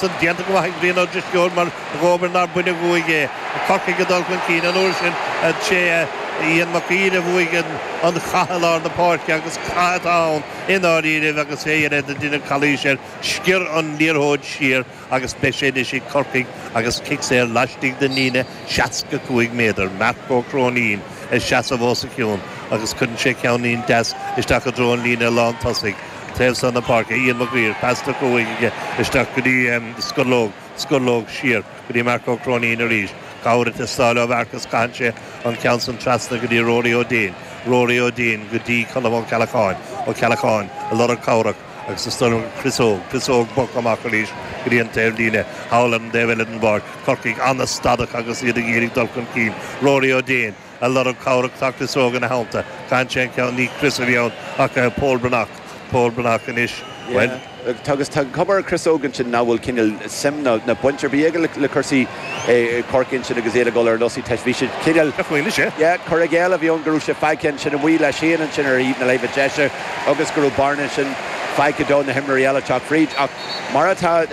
sin déanta go maith ag Brian Ó Drisceoil mar dhóbair nár baineadh uaidh é. Corcaigh ag dul chun cinn an uair sin. Is é Iain Mag Uidhir a bhuaigh an cath i lár na páirce agus cath atá ann i ndáiríribh agus é ag fiafraí nár deineadh calaois air. Sciorr an liathróid siar agus beidh sé anois ag Corcaigh agus cic saor laistigh den líne 65 méadar. Marc Ó Cróinín ag seasamh os a chionn agus cuireann sé ceann deas isteach i dtreo an líne lántosaigh. taobh so na páirce, Iain Mag Uidhir, pas tugtha aige isteach go dtí Scurlóg, Scurlóg siar go dtí Marc Ó Cróinín arís, cabhair ag teastáil ó Mharc is caitheann sé an ceann san trasna go dtí Rory Ó Déin, Rory Ó Déin go dtí Colm Ó Ceallacháin, Ó Ceallacháin ag lorg cabhrach agus ag stoirmeadh Chris Óg, Chris Óg bogtha amach arís go dtí an taobh líne, thall ar an dtaobh eile den bpáirc, Corcaigh an-stadach agus iad ag iarraidh dul chun cinn, Rory Ó Déin. a' lorg cabhrach tá Chris Óg ina theannta, caitheann sé an ceann ní Chris a bhí ann ach eh Pól Breathnach, Pól Breathnach anois, bhuel. Yeah, agus tá an chuma ar Chris Óg ansin nach bhfuil cineál suim ná baint ar bith aige le cúrsaí eh Chorcaí ansin agus iad ag dul ar ionsaí teist, bhí siad cineál, Nach bhfuil, is ea. yeah, cur i gcéill a bhí ann go raibh sé fágtha ansin amuigh leis féin ansin ar thaobh na láimhe deise agus go raibh bearna ansin fágtha do na himreoirí eile teacht fríd ach Mar atá,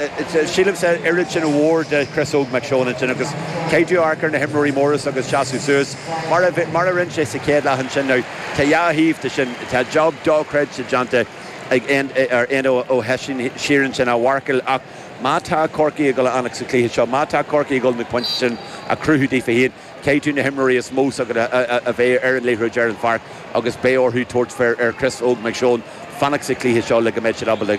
sílimse, oiread sin mhór de Chris Óg Mac Seoin ansin agus caithfidh tú amharc ar na himreoirí móra san agus seasamh suas mar a rinne sé sa chéad leath ansin. Now, tá dhá thaobh de sin. Tá job dochreidte déanta ag Éanna Ó hOisín siar ansin á mharcáil ach má tá Corcaigh ag dul a fhanacht sa chluiche seo, má tá Corcaigh ag dul na pointí sin a chruthú daofa féin, Caithfidh na himreoirí is mó s'acu a bheith ar an liathróid ar an pháirc agus beidh orthu tabhairt fair ar Chris Óg Mac Seoin fanacht sa chluiche seo le go mbeidh siad ábalta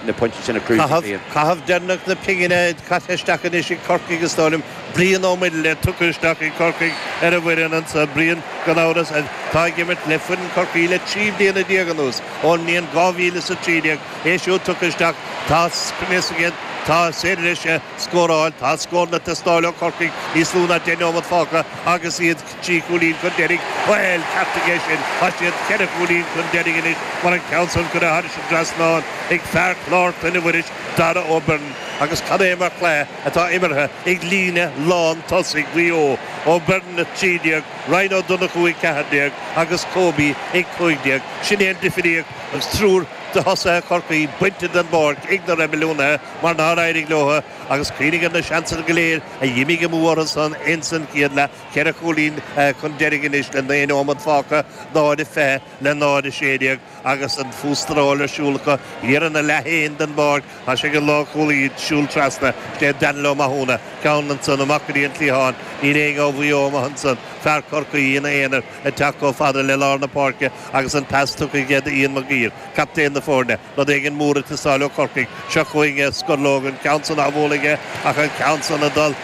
na pointí sin a chruthú. Caitheamh deireanach na pingine caite isteach anois ag Corcaigh is dóigh liom Brian Ó Muirthile tugtha isteach ag Corcaigh ar an bhfoireann anseo. Brian, gan amhras, atá ag imirt le foireann Chorcaí le trí bliana déag anuas, ón mbliain dhá mhíle is a trí déag. É siúd tugtha isteach, tá sprioc sa gcéad, tá sé tar éis. scóráil. Tá scóranna ag teastáil ó Chorcaigh níos lú ná deich nóiméad fágtha agus iad trí chúilín chun deiridh. Bhuel, ceartaigh é sin, tá siad ceithre chúilín chun deiridh anois mar an ceann san curtha thairis an dtrasnán ag fear Chlár Chlainne Mhuiris, Darragh Ó Beirn, agus cad é mar chluiche atá imeartha ag líne lántosaigh Mhaigh Eo, Ó Beirn, 13, Ryan Ó Donnchú, 14, agus Kobe, 15. Sin é an difríocht agus triúr de thosaithe Chorcaí bainte den bpáirc ag na Reibiliúnaithe. mar nár éirigh leo, agus cuimhnigh ar na seansanna go léir a dh'imigh amú orthu san ins an chéad leath, ceithre chúilín chun deiridh anois le naoi nóimeat fágtha, 0:20 le 0:16, agus an fústráil ar siúl acu thiar ina leath féin den bpáirc. Tá sé ag an lánchúlaí ag siúl trasna, is é Daniel Ó Mathúna ceann ansan, amach go dtí an cliathán. Níl éinne ó Mhaigh Eo amuigh ansan, fear Chorcaí ina aonar ag teacht chomh fada le lár na páirce agus an pas tugtha aige do Ian Mag Uidhir, captaen na foirne. Rud éigin mór ag teastáil ó Chorcaigh. Seo chugainn é, scór lóg, an ceann san á bhualadh aige ach an ceann san ag dul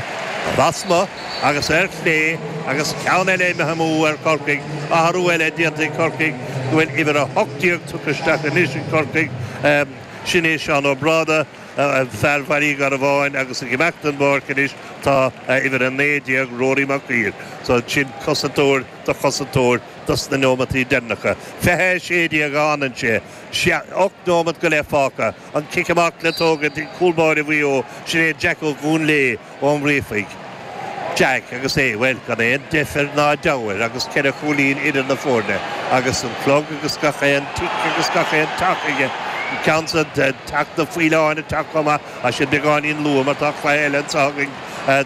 lasmuigh agus ar chlé agus ceann eile imithe amú ar Chorcaigh. Athrú eile déanta ag Corcaigh go bhfuil uimhir 18 tugtha isteach anois ag Corcaigh. Sin é Seán Ó Bráda, fear Bhaile Garbháin agus ag imeacht den bpáirc anois tá uimhir 19, Rory Mac Uidhir. So sin cosantóir do chosantóir dos na neomataí deireanacha. Fiche a sé déag a fhanann sé. ocht nóimeat go leith fágtha, an cic amach le tógaint ag cúl báire Mhaigh Eo, sin é Jack Ó Conghaile ón nGríofaigh. Jack agus é, bhuel, gan aon deifir ná deabhadh agus ceithre chúilín idir na foirne agus an clog agus gach aon tic agus gach aon tac aige, an ceann san ag teacht, na faoileáin ag teacht chomh maith iad beagáinín luath mar tá cluiche eile anseo againn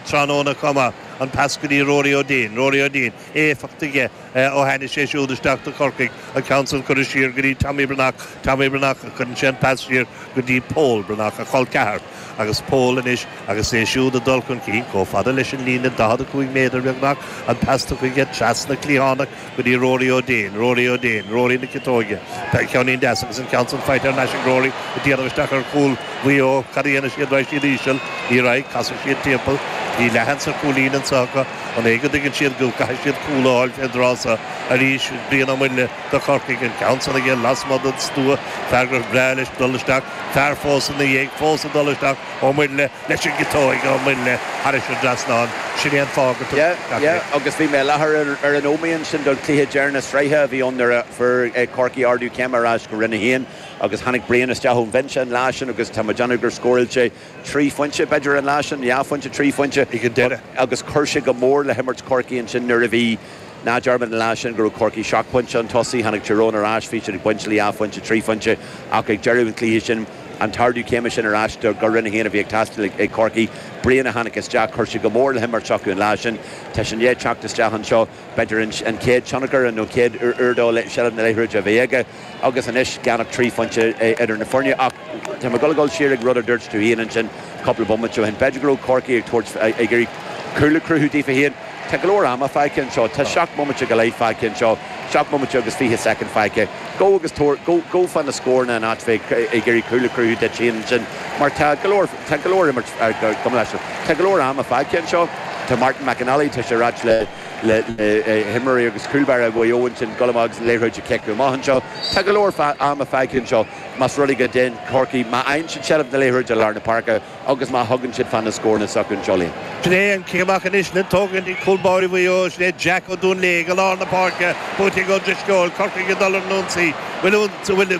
tráthnóna chomh maith, an pas go dtí Rory O'Dane, Rory O'Dane. éifeacht aige ó tháinig sé siúd isteach do Chorcaigh, an ceann san curtha siar go dtí Tommy Breathnach, Tommy Breathnach cuireann sé an pas siar go dtí Pól Breathnach, a chol ceathar, agus Pól anois agus é siúd ag dul chun cinn chomh fada leis an líne 45 méadar beagnach, an pas chuige trasna cliathánach go dtí Rory Ó Déin, Rory Ó Déin, Rory na ciotóige, ceannín deas agus an ceann san faighte ar n-ais ag Rory ag déanamh isteach ar chúl Mhaigh Eo, cad a dhéanfaidh siad, raghaidh siad íseal, ní raghaidh, casfaidh siad timpeall, go dtí leathan sa chúilín anseo acu. An é go dtuigeann siad go gcaithfidh siad cúl a fháil fén dtráth so arís? Brian Ó Muirthile do Chorcaigh, an ceann san aige lasmuigh den stua, fear gur bhreá leis dul isteach, fear fós ina dhiaidh, fós ag dul isteach, Ó Muirthile leis an gciotóig, Ó Muirthile thar an dtrasnán, sin é an fáth gur tugadh isteach é. Sea, agus bhí mé i láthair ar an Ómaigh sin don chluiche deireanach sraithe a bhí ann nuair a fuair Corcaigh ardú céime ar ais go Roinn 1 agus tháinig Brian isteach ón bhinse an lá sin agus tá mé ag déanamh gur scóráil sé Trí phointe, b'fhéidir, an lá sin, dhá phointe, trí phointe ag an deireadh. Agus chuir sé go mór le himirt Chorcaí ansin nuair a bhí, ná dearmad an lá sin go raibh Corcaigh seacht bpointe chun tosaigh, tháinig Tyrone ar ais, bhí siad ag baint dhá phointe, trí phointe ach ag deireadh an chluiche sin, an t-ardú céime sin ar ais go Roinn 1 a bhí ag teastáil ag Corcaigh, Brian a tháinig isteach, chuir sé go mór le himirt s'acu an lá sin. Tá sin le teacht isteach anseo. b'fhéidir, an chéad tionchar nó an chéad uair dó i seilbh na liathróide a bheith aige agus anois gan ach trí phointe idir na foirne. Ach tá mé ag dul siar ag rud a dúirt tú féin ansin cúpla bomaite ó shin. B'fhéidir go raibh Corcaigh ag iarraidh cúl a chruthú daofa féin. Tá go leor ama fágtha anseo. Tá seacht mbomaite go leith fágtha anseo, seacht mbomaite agus fiche soicind fágtha. Gabh agus gabh fá na scóranna in áit bheith ag iarraidh cúl a chruthú duit féin ansin mar tá go leor Tá go leor imirt sa gcluiche seo. Tá go leor ama fágtha anseo. Tá Martin McInally, tá sé a rá le himreoirí agus cúl báire Mhaigh Eo ansin, goil amach agus an liathróid a chiceadh amach anseo. Tá go leor ama fágtha anseo más rud é go dtéann Corcaigh, má fhaigheann siad seilbh na liathróide i lár na páirce agus má thugann siad fá na scóranna s'acu anseo, Liam. Sin é an cic amach anois le tógaint ag cúl báire Mhaigh Eo, sin é Jack Ó Duinnshléibhe go lár na páirce, buaite ag Ó Drisceoil. Corcaigh ag dul ar an ionsaí. Bhfuil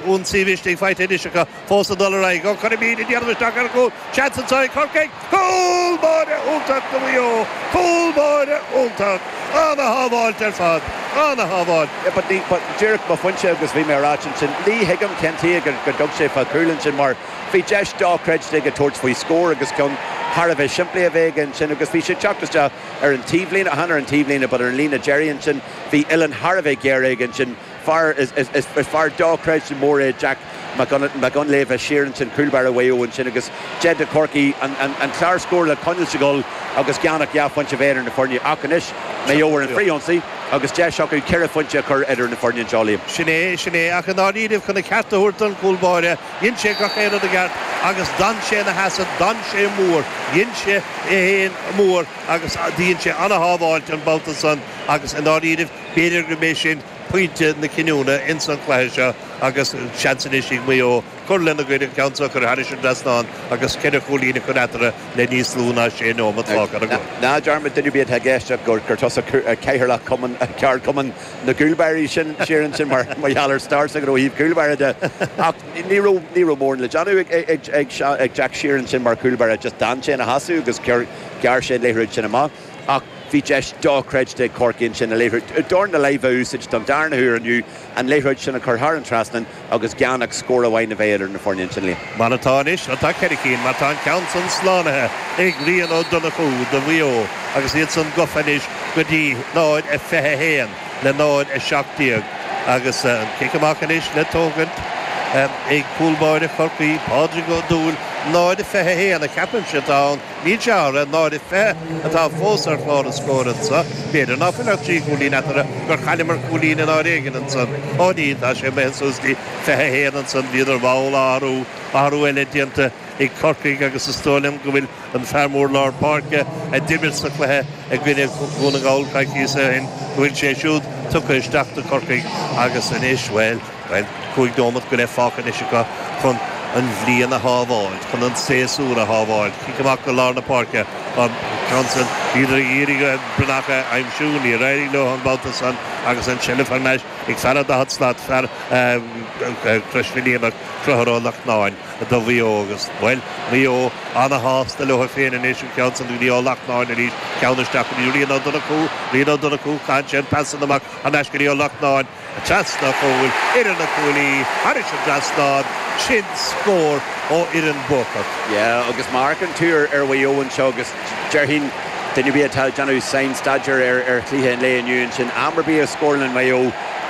ionsaí maith fágtha anois acu? fós ag dul ar aghaidh. Ó, cúl, mí-ádh, ag déanamh isteach ar an gcúl. Seans anseo ag Corcaigh. Cúl báire iontach ag Maigh Eo. Cúl báire iontach. An-shábháilt ar fad. An-shábháil. Yeah but ní, but díreach an pointe agus bhí mé a rá ansin, ní thuigim cén chaoi go dtug sé fá chúl ansin mar bhí deis dochreidte aige tabhairt faoi scór agus ceann thar a bheith simplí a bheith aige ansin agus bhí sé ag teacht isteach ar an taobhlíne, chan ar an taobhlíne but ar an líne deiridh ansin, bhí uillinn thar a bheith géar aige ansin. Fear, is, is, is, is fear dochreidte mór é Jack Mac, Mac Dhoinnshléibhe siar ansin, cúl báire Mhaigh Eo ansin agus deis ag Corcaigh, an, an, an clár scóir a choinneáil ag goil agus gan ach dhá phointe a bheith idir na foirne. Ach anois Maigh Eo ar an frith-ionsaí agus deis acu ceithre phointe a chur idir na foirne anseo, Liam. Sin é, sin é. Ach i ndáiríribh, chun a cheart a thabhairt don chúl báire, dhein sé gach aon rud i gceart agus d'fhan sé ina sheasamh, d'fhan sé mór, dhein sé é féin mór agus dhein sé an-shábháilt an babhta san agus i ndáiríribh, B'fhéidir go mbeidh sin pointe na cinniúna ins an chluiche seo agus seans anois ag Maigh Eo cur lena gcuid, an ceann seo a chur thar an trasnán agus ceithre chúilín a chur eatarthu le níos lú ná sé neomat fágtha ar an gclog. Ná dearmad duine ar bith atá i gceist agat gur tusa Cathaoirleach Cumann, Ceardchumann na gCúlbáirí sin siar ansin mar gheall ar stair s'agat ó thaobh cúlbáire de. Ach ní raibh mórán le déanamh ag Jack siar ansin mar chúlbáire, just d'fhan sé ina sheasamh agus ghearr sé an liathróid sin amach. ach bhí deis dochreidte ag Corcaigh ansin an liathróid, dorn na láimhe a úsáid don darna huair inniu, an liathróid sin a chur thar an trasnán agus gan ach scór amháin a bheith idir na foirne ansin. Liam. Mar atá anois, atá ceithre cinn, mar tá an ceann san slánaithe ag Rian Ó Donnchú do Mhaigh Eo agus iad san gofa anois go dtí 0 a 21 le 0 a 17 agus an cic amach anois le tógaint ag cúl báire Chorcaí, Pádraig Ó Dúill. 0 a 21 a cheapaimse tá ann. Ní hea, náid a fiche atá fós ar chlár an scóir anso. B'fhéidir ná fuil ach trí chúilín eatarthu, gur chailleamar cúilín in áit éigin ansan. Ó, ní, tá sé imithe suas go dtí fiche a haon ansan. Bhíodar mall á athrú. Athrú eile déanta ag Corcaigh agus is dóigh liom go bhfuil an fear mór lár páirce a d'imir sa chluiche i gcoinne Dhún na nGall coicíos ó shin, go bhfuil sé siúd tugtha isteach do Chorcaigh agus anois, bhuel. Bhuel cúig nóimeat go leith fágtha anois acu chun an bhliain a shábháil, chun an séasúr a shábháil. Cic amach go lár na páirce an ceann sin. Bhíodar ag iarraidh Breathnach a aimsiú, níor éirigh leo an babhta san agus an tseilbh thar n-ais ag fear an daichead slat, fear Chrois Mhaoilíona, Conchúr Ó Lachtnáin do Mhaigh Eo agus, bhuel, Maigh Eo ana-shásta leo féin anois, an ceann san go dtí Ó Lachtnáin arís, ceann isteach go dtí Rian Ó Donnchú, Rian Ó Donnchú, caitheann sé an pas san amach thar n-ais go dtí Ó Lachtnáin. Trasna an chúil, idir na cuaillí, thairis an trasnán, sin scór ó fhoireann bhuachaint. Yeah agus marc an tuír ar Mhaigh Eo anseo agus déarfainn duine ar bith atá ag déanamh sainstaidéar ar ar chluiche an lae inniu ansin am ar bith a scórálann Maigh Eo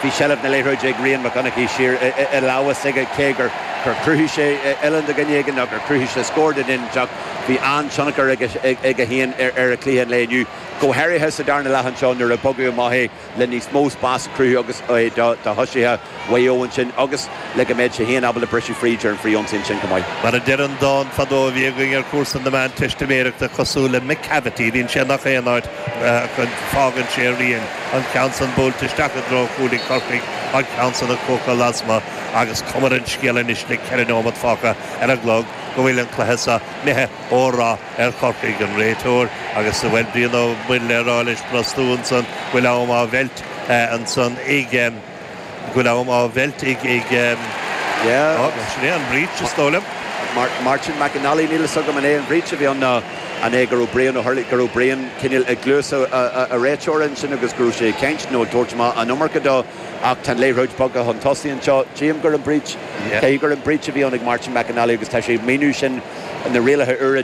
bhí seilbh na liathróide ag Rian Mac Dhonnchaidh siar i lamhas aige cé gur gur chruthaigh sé oileán do dhuine éigin nó gur chruthaigh sé scór do dhuine inteacht bhí an-tionchar ag aige féin ar ar chluiche an lae inniu go háirithe sa darna leath anseo nuair a bogadh amach é le níos mó spás a cruthú agus do thosaithe Mhaigh Eo ansin agus le go mbeadh sé féin ábalta briseadh fríd ar an fhrithionsaí ansin chomh maith. Mar a deir an dán fadó a bhí againn ar chúrsa na Meánteistiméireachta cosúil le Macavity, bhíonn sé in gach aon áit go fágann sé a rian, an ceann san buailte isteach i dtreo chuaillí Chorcaí, an ceann san ag cuachadh lasmuigh agus cuma ar an scéal anois le ceithre neomat fágtha ar an gclog go bhfuil an cluiche so imithe ó rath. ar Chorcaigh, an réiteoir, agus a bhfuil Brian Ó Muirthile a rá leis brostú ansan, go bhfuil am á mheilt ansan ag, go bhfuil am á mheilt ag, ag, yeah, oh, sin é an breach, is dóigh liom. Martin McNally, níl fhios agam an é an breach a bhí ann nó an é go raibh Brian Ó Hurley, go raibh Brian cineál ag gluais a, a, a réiteoir ansin agus go raibh sé ag caint nó ag tabhairt amach an iomarca dó ach tá an liathróid bogtha chun tosaigh anseo. Tchím gur an breach, cé gur an breach a bhí ann ag Martin McNally agus tá sé ag míniú sin na rialacha úra de.